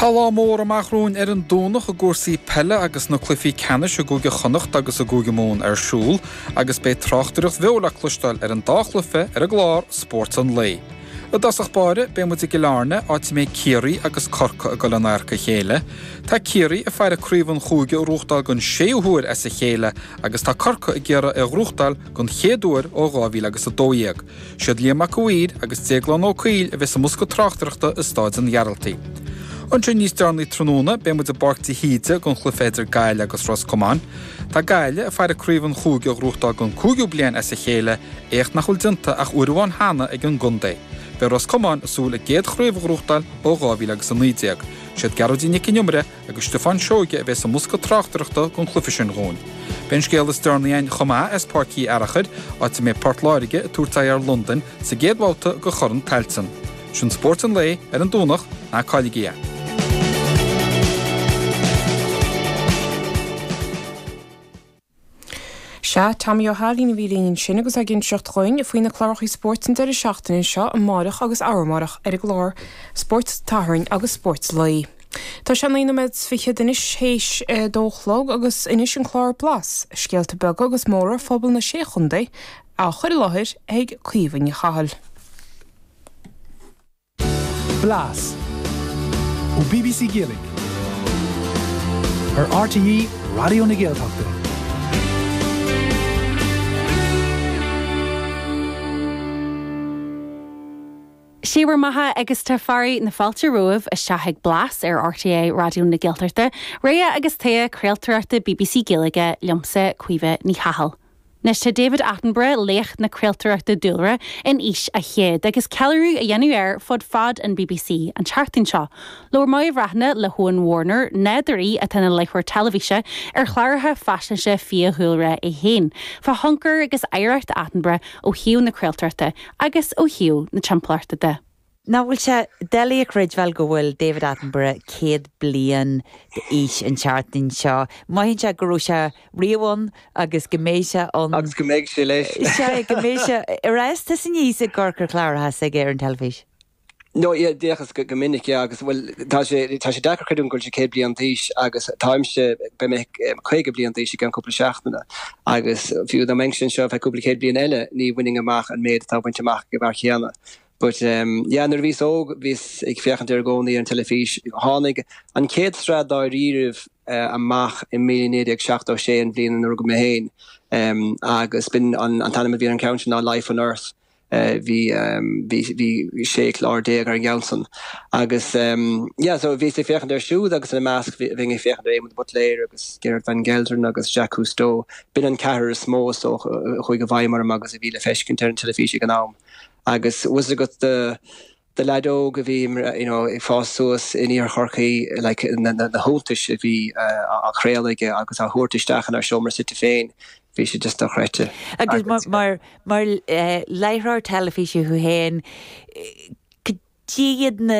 Tá lá mór amach romhainn ar an Domhnach i gcúrsaí peile agus na cluichí ceannais i gCúige Chonnacht agus i gCúige Mumhan ar siúl agus beidh tráchtaireacht bheo le cloisteáil ar an dá chluiche ar an gclár Spórt an Lae. I dtosach báire, beidh muid i gCill Airne, áit a mbeidh Ciarraí agus Corcaigh ag dul in adharca a chéile. Tá Ciarraí ag faire ar chraobh an chúige a ghnóthachtáil den séú huair as a chéile agus tá Corcaigh ag iarraidh é a ghnóthachtáil den chéad uair ó 2012. Siad Liam Mac an Mhaoir agus Déaglán Ó Caoil a bheas i mbosca tráchtaireachta i Stáid an Ghearaltaigh. Ansin níos deireanaí tráthnóna beidh muid i bPáirc de hÍde don chluiche idir Gaillimh agus Ros Comáin. Tá Gaillimh ag faire ar chraobh an chúige a ghnóthachtáil don cúigiú bliain as a chéile, éacht nach bhfuil déanta ach uair amháin cheana ag an gcontae. Beidh Ros Comáin ag súil a gcéad chraobh a ghnóthachtáil ó 2000 agus 19. Siad Gearóidín Nic an Iomaire agus Stiofán Seoige a bheas sa mbosca tráchtaireachta don chluiche sin dhúinn. Beidh an scéal is deireanaí againn chomh maith as Páirc Uí Fhearachair, áit a mbeidh Port Láirge ag tabhairt aghaidh ar Londain sa gcéad bhabhta de Chorn Tailteann. Sin Spórt an Lae ar an Domhnach, ná cailligí é! Sea, Tomaí Ó hAilín a bhí linn ansin agus ag inseacht dhuinn faoi na clárachaí spóirt an deireadh seachtaine seo, amáireach agus arú amáireach ar an gclár Spórt an tSathairn agus Spórt an Lae. Tá sé naoi nóiméad is fichead anois théis a dó a chlog agus anois an clár Blas, scéalta beaga agus móra phobal na Sé Chontae á chur i láthair ag Caoimhe Ní Chathail. Blas ó bbc Gaeilge ar RTÉ Raidió na Gaeltachta. Sé bhur mbeatha agus tá fearadh na fáilte romhaibh isteach ag Blas ar RTÉ Raidió na Gaeltachta, rogha agus togha craoltóireachta bbc Gaeilge liomsa, Caoimhe Ní Chathail. Anois tá David Attenborough, laoch na craoltóireachta dúlra, in aois a chéad agus ceiliúradh á dhéanamh ar fud fad an bbc an tseachtain seo. Labhair Máire Bhreathnach le hEoin Warner, nádúraí atá ina láithreoir teilifíse ar chláracha faisnéise fiadhúlra é féin, fá thionchar agus oidhreacht Attenborough ó thaobh na craoltóireachta agus ó thaobh na timpeallachta de. Nach bhfuil sé doiligh a chreidbheáil go bhfuil David Attenborough céad bliain d'aois an tseachtain seo? Mothaíonn sé go raibh sé riamh ann agus go mbeidh sé ann. Agus go mbeidh sé leis. Sea, go mbeidh sé ar ais, tus aníos i gcartlann cláraithe s'aige ar an teilifís. Nó d'fhéachas go minic, yeah. Agus, bhuel, tá sé, tá sé deacair a chreidiúint go bhfuil sé céad bliain d'aois agus táimse, beidh mé caoga bliain d'aois i gceann cúpla seachtaine. Agus fiú dá mbeinn anseo, bheadh cúpla céad bliain eile ní bhainfinn amach an méad atá bainte amach ag an bhfear céanna. But yeah, nuair a bhíos óg, bhíos ag féachaint air i gcónaí ar an teilifís. Tháinig an chéad sraith dáiríribh amach i 1976, an bhliain ina rugadh mé féin, agus b'in an t-ainm a bhí ar an cheann sin ná Life on Earth. Bhí 16 clár ar an gceann san. Agus yeah, so bhíos ag féachaint air siúd agus ina measc bhí mé ag féachaint ar Éamon de Buitléar agus Gerrit van Gelderen agus Jacques Cousteau. B'in an ceathrar is mó is dócha a chuaigh i bhfeidhm orm agus a bhí le feiscint ar an teilifís ag an am. Agus bhfuil fhios agat do do leaid óg a bhí you know ag fás suas in Iarthar Chorcaí like na na na hiontais a bhí uh, á chraoladh aige agus á thabhairt isteach inár seomra suite féin bhí sé just dochreidte. Agus mar mar mar uh, láithreoir teilifíse thú féin, eh, cad iad na